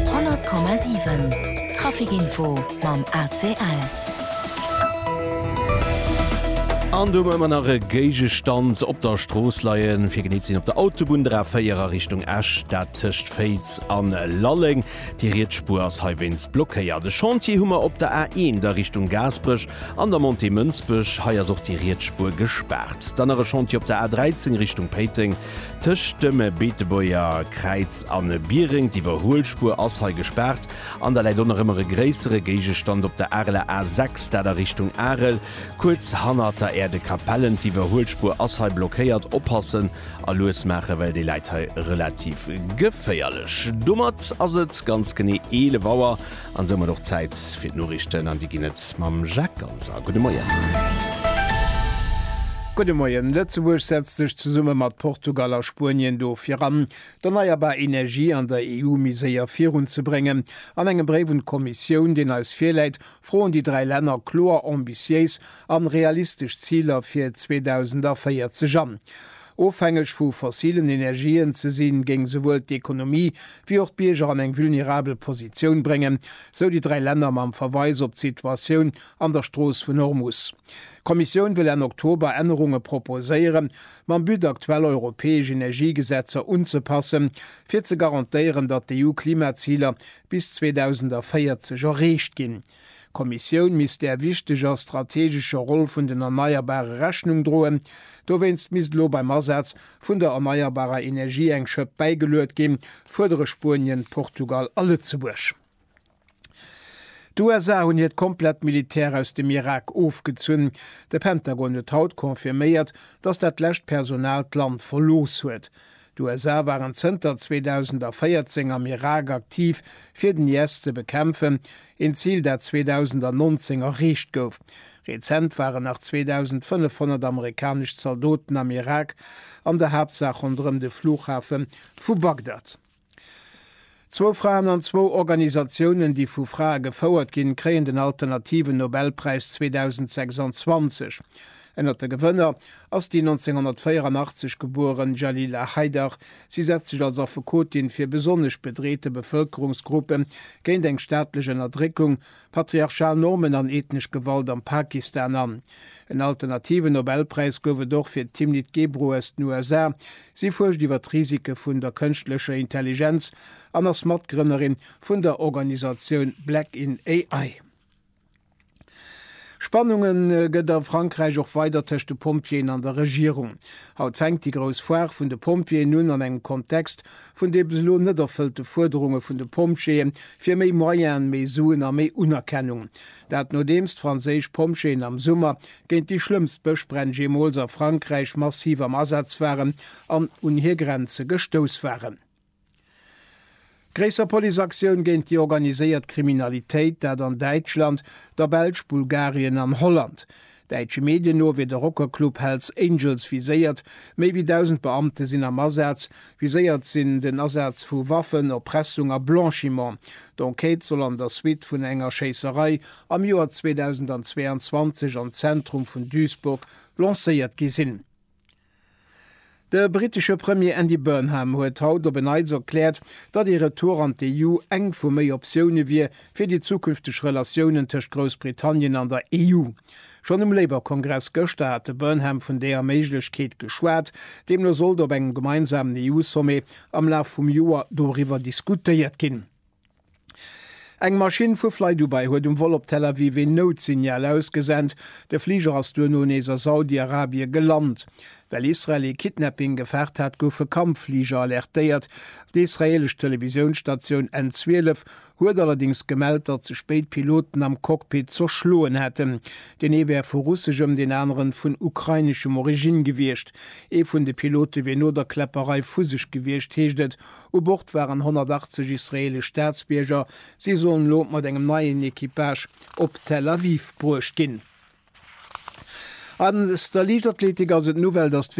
100,7 Trafic Info mam ACL. An do hu mer ëmmer nach e Géigestand op der Strooss leien, fir genee ze sinn op der Autobunn, der A4 a Richtung Esch, dat tëscht Féiz a Lalleng. Déi riets Spuer ass heiwéinst blockéiert. E Chantier hu mer op der A1 a Richtung Gaasperech an der Montée Mënsbech. Hei ass och déi riets Spuer gespaart. Dann nach e Chantier op der A13 Richtung Péiteng. Tëscht dem Beetebuerger Kräiz a Biereng, d'Iwwerhuelspuer ass hei gespaart an da läit och nach ëmmer e gréissere Géigestand op der Areler A 6, dat a Richtung Arel, kuerz hannert der Aire de Capellen. D'Iwwerhuelspuer ass hei blockéiert. Oppassen a lues maachen, well déi läit hei relativ geféierlech. Domat ass et ganz genee 11 Auer An soumat och Zäit fir d'Noriichten an déi ginn et mam Jacques Ganser. Gudde Moien. Gudde Moien. Lëtzebuerg setzt sech zesumme mat Portugal a Spuenien dofir an, d'erneierbar Energie an der EU méi séier virun ze bréngen. An engem Bréif un d'Kommissioun, deen eis virläit, froen déi dräi Länner kloer ambitiéis an realistesch Ziler fir 2040 an. Ofhängeg vu fossilen Energien ze sinn, géing souwuel d'Ekonomie wéi och d'Bierger an eng vulnerabel Positioun bréngen, sou déi dräi Länner mam Verweis op d'Situatioun an der Strooss vun Hormus. D'Kommissioun wëll Enn Oktober Ännerunge proposéieren, mam But aktuell europäesch Energiegesetzer unzepassen, fir ze garantéieren, datt d'EU-Klimaziler bis 2040 erreecht ginn. D'Kommissioun misst där wichteger strategescher Roll vun den Erneierbare Rechnung droen. Dowéinst misst elo beim Asaz vun der erneierbarer Energie eng Schëpp bäigeluet ginn, fuerdere Spuenien, Portugal a Lëtzebuerg. D'USA hunn hiert komplett Militär aus dem Irak ofgezunn. De Pentagon huet haut confirméiert, datt dat lescht Personal d'Land verlooss huet. D'USA waren zënter 2014 am Irak aktiv, fir den IS ze bekämpfen, een Zil, dat 2019 erreecht gouf. Rezent waren nach 2.500 amerikanesch Zaldoten am Irak, an der Haaptsaach ronderëm de Flughafe vu Bagdad. Zwou Fraen an zwou Organisatiounen, déi vu Frae gefouert ginn, kréien den alternativen Nobelpräis 2026. Ënnert de Gewënner ass déi 1984 gebueren Jalila Haidar. Si setzt sech als Affekotin fir besonnesch bedreete Bevëlkerungsgruppe géint eng staatlech Ënnerdréckung Patriarchal Normen an ethnesch Gewalt am Pakistan an. En alternativen Nobelpräis gouf et och fir d'Timnit Gebru aus den USA. Si fuerscht iwwer d'Risike vun der kënschtlecher Intelligenz an ass Matgrënnerin vun der Organisatioun Black in AI. Spannunge gëtt a Frankräich och weider tëscht de Pompjeeën an der Regierung. Haut fänkt déi grouss Foire vun de Pompjeeën un, an engem Kontext, vun de bis elo net erfëllte Fuerderunge vun de Pompjeeë fir méi Moyenen, méi Suen a méi Unerkennung. Dat nodeems d'franséisch Pompjeeën am Summer géint déi schlëmmst Bëschbränn jeemools a Frankräich massiv am Asaz waren an un hir Grenze gestouss waren. Gréisser Policeaktioun géint déi organiséiert Kriminalitéit, dat an Däitschland, der Belsch, Bulgarien an Holland. Däitsche Medien no wier de Rockerclub Hell's Angels viséiert. Méi wéi 1.000 Beamte sinn am Asaz. Viséiert sinn den Asaz vu Waffen, Erpressung a Blanchiment. D'Enquête soll an der Suite vun enger Schéisserei am Joer 2022 am Zentrum vun Duisburg lancéiert gi sinn. De brittesche Premier Andy Burnham huet haut op en Neits erkläert, datt ee Retour an d'EU eng vu méi Optioune wier fir déi zukünfteg Relatiounen tëscht Groussbritannien an der EU. Schonn um Labour-Kongress gëschter hat de Burnham vun deeër Méiglechkeet geschwat. Deemno sollt op engem gemeinsamen EU-Sommet am Laf vum Joer doriwwer diskutéiert ginn. Eng Maschinn vu FlyDubai huet um Vol op Tel Aviv een Nout-Signal ausgesent. De Fliger ass duerno nees a Saudi-Arabie gelant. Well Israel ee Kidnapping gefaart hat, goufe Kampffliger alertéiert. D'israeelesch Televisiounsstatioun N12 huet allerdéngs gemellt, datt ze spéit Piloten am Cockpit zerschloen hätten. Deen ee wär vu russeschem, deen anere vun ukraineschem Origine gewiescht. Ee vun de Pilote wier no der Kläpperei vu sech gewiescht, heescht et U Bord waren 180 israeelesch Staatsbierger. Si sollen elo mat engem neien Equipage op Tel Aviv bruecht ginn. An der Liichtathletik ass et d'Nouvelle, datt